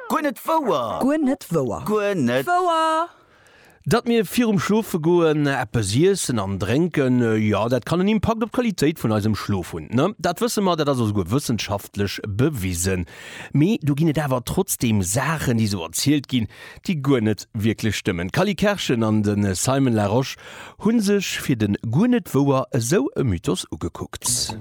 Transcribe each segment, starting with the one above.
Guer net wouer! Guer net wouer! Guer net wouer! Datt mir virum Schlofegoen eppes iessen an drénken, jo, dat kann en Impakt op d'Qualitéit vun eisem Schlof hunn. Dat wësse mer, dat ass och souguer wëssenschaftlech bewisen. Mee do ginn et awer trotzdeem Saachen, déi esou erzielt ginn, déi guer net wierklech stëmmen. D'Cally Kerschen an de Simon Larosche Hu sech fir den guer net wouer esou e Mythos ugekuckt.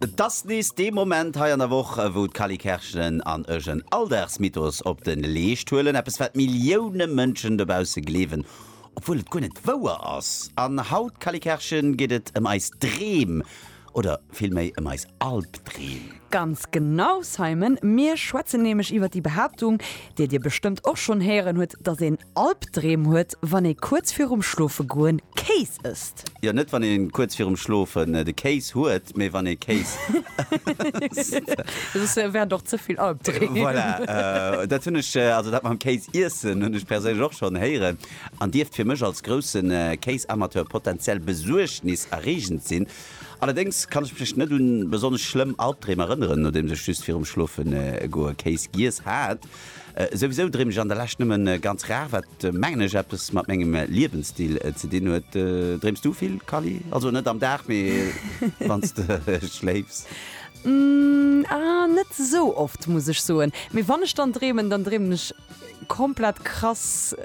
Et ass nees dee Moment hei an der Woch, wou d'Cally Kerschelen an ech en Alldagsmythos op de Leescht huelen, eppes wat Millioune Mënschen dobausse gleewen, obwuel et guer net wouer ass. An haut, Cally Kerschen, geet et ëm eis Dreem Oder villméi ëm eis Albdreem? Ganz genau, Simon! Mir schwätzen nämlech iwwer déi Behaaptung, déi dir bestëmmt och schonn héieren hutt, dass een Albdreem huet, wann ee kuerz virum Schlofegoen Kéis ësst. Jo, net wann ee kuerz virum Schlofen de Kéis huet, mee wann ee Kéis ësst. Soss wären et och ze vill Albdreem. Voilà, dat hunn ech, also dat mam Kéis iessen, hunn ech perséinlech och schonn héieren. an dierft fir mech als grousse Kéisamateur potenziell besuergniserreegend sinn. Allerdéngs kann ech mech net un besonnesch schlëmm Albdreem erënneren, nodeems ech just virum Schlofegoe Kéis giess hat. Souwisou dreem ech an der Lescht nëmme ganz rar, wat mengen ech eppes mat mengem Liewensstil ze dinn huet. Dreems du vill, Kally? Also net am Dag, mee wann s de schléifs? Ahh, net esou oft, muss ech soen. Mee wann ech dann dreemen, dann dreemen ech. komplett krass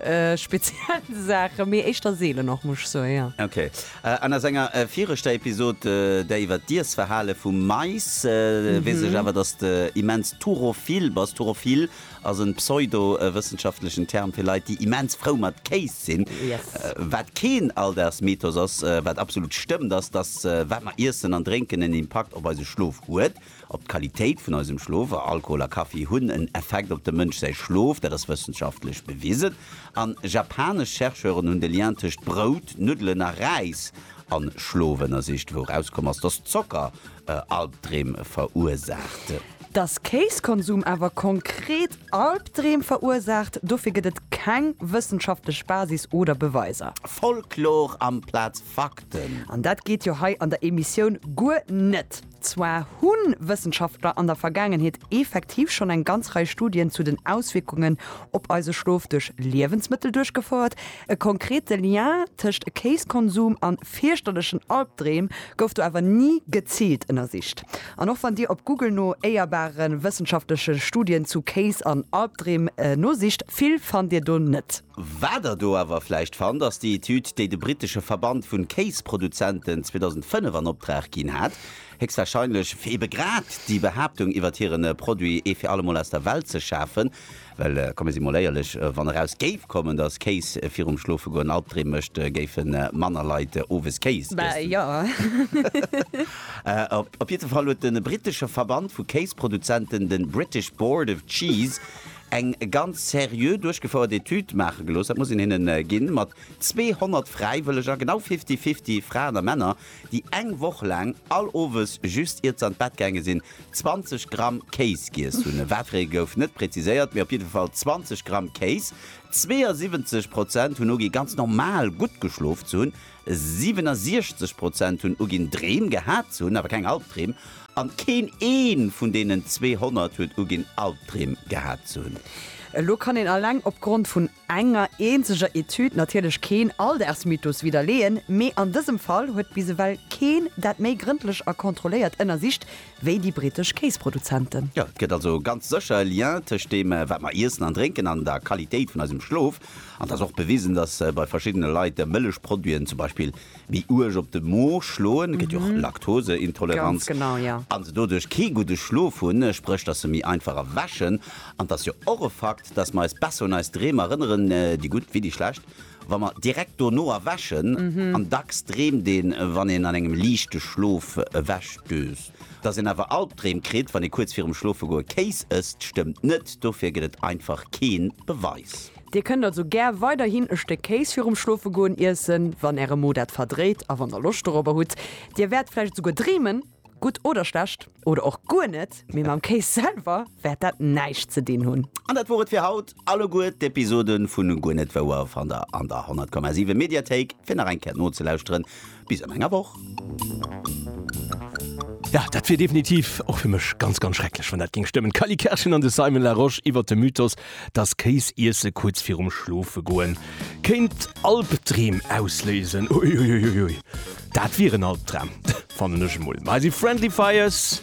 speziell Saachen, mee éischter seelen och, muss ech soen, jo. Ok. An a senger viregter Episod, där iwwer d'Iessverhale vum Mais, weess ech awer, dass de immens turophil bass. Turophil ass en pseudo-wëssenschaftlechen Term fir Leit, déi immens frou mat Kéis sinn. Yes. Wat keen Alldagsmythos ass, wat absolut stëmmt, ass, dass wat mer iessen an drénken en Impakt op eise Schlof huet. Op d'Qualitéit vun eisem Schlof, a Alkohol a Kaffi hunn en Effekt op dem Mënsch säi Schlof, dat ass wëssenschaftlech bewisen. An japanesch Chercheuren hunn de Lien tëscht Brout, Nuddelen a Räis an Schlof ënnersicht, wou erauskomm ass, dass Zocker Albdreem verursaacht. Dass Kéiskonsum awer konkret Albdreem verursaacht, dofir gëtt et keng wëssenschaftlech Basis oder Beweiser. Folklor amplaz Fakten! An dat geet jo hei an der Emissioun guer net! Zwar hu Wëssenschaftler an der Vergaangenheet effektiv schonn eng ganz Rei Studien zu den Auswierkungen op eise Schlof duerch Liewensmëttel duerchgefouert. E konkrete Lien tëscht Kéiskonsum a fierchterlechen Albdreem gouf do awer ni geziilt ënnersicht. An och wann Dir op Google no éierbare wëssenschaftleche Studien zu Kéis an Albdreem nosicht, vill fannt Dir do net. Wat der do awer vläicht fannt, ass déi Etüd, déi de brittesche Verband vun Kéisproduzenten 2005 an Opdrag ginn hat, héchstwahrscheinlech fir ebe grad déi Behaaptung iwwert hiren Produit ee fir allemol aus der Welt ze schafen. Well komme si mol éierlech, wann eraus géif kommen, dass Kéis virum Schlofegoen Albdreem mécht, géife manner Leit owes Kéis iessen. Op jiddefall huet de brittesche Verband vu Kéisproduzenten, de British Board of Cheese, eng ganz seriö duerchgefouert Etüd maache gelooss, dat muss een hinnen ginn, mat 200 Fräiwëlleger, genau fifty-fifty Fraen a Männer, déi eng Woch laang all Owes, just iert se an d'Bett gaange sinn, 20 Gramm Kéis giess hunn. Wat fir ee gouf net präziséiert, mee op jidde Fall 20 Gramm Kéis. 72 Prozent hunn ugi ganz normal gutt geschlof ze hunn. 67 Prozent hunn uginn, Dreem gehat ze hunn, awer keng Albdreem. An keen ee vun deenen 200 huet uginn, Albdreem gehat ze hunn. Elo kann een alleng opgrond vun enger eenzeger Etüd natierlech keen Alldaagsmythos widderleeën, mee an dësem Fall huet bis ewell keen dat méi grëndlech a kontrolléiert ënnersicht wéi déi brittesch Kéisproduzenten. Jo, et gëtt also ganz sécher e Lien tëscht deem, wat mer iessen an drénken, an der Qualitéit vun eisem Schlof. An et ass och bewisen, dass bei verschiddene Leit Mëllechproduiten zum Beispill méi uerg op de Mo schloen, et gëtt jo och Laktoseintoleranz, a se doduerch kee gudde Schlof hunn, spréch dass se méi einfach erwächen. An et ass jo och e Fakt, dass mer eis besser un eis Dreem erënneren, déi gutt wéi déi schlecht, wa mer direkt dono erwächen. An dacks dreemt een, wann een an engem liichte Schlof ewechdöst. Dass een awer Albdreem kritt, wann ee kuerz virum Schlofegoe Kéis ësst, stëmmt net. Dofir gëtt et einfach kee Beweis. Dir kënnt also gär weiderhin e Stéck Kéis virum Schlofegoen iessen, wann Äre Mo dat verdréit a wann Der Loscht dorobber hutt. Dir wäert vläicht esouguer dreemen, gutt oder schlecht, oder och guer net, mee mam Kéis selwer wäert dat näischt ze dinn hunn. An dat wor et fir haut. Alleguer d'Episoden vu Guer net wouer fannt der an der 100,7 Mediathéik fir nach eng Kéier nozelauschteren. Bis an enger Woch. Ja, dat wier definitiv och fir mech ganz, ganz schrecklech, wann dat géing stëmmen. D'Cally Kerschen an de Simon Larosche iwwer de Mythos, dass Kéis iesse kuerz virum Schlofegoen kéint Albdreem ausléisen. Uiuiuiui, dat wier en Albdram, fannen ech emol. Mä si Friendly Fires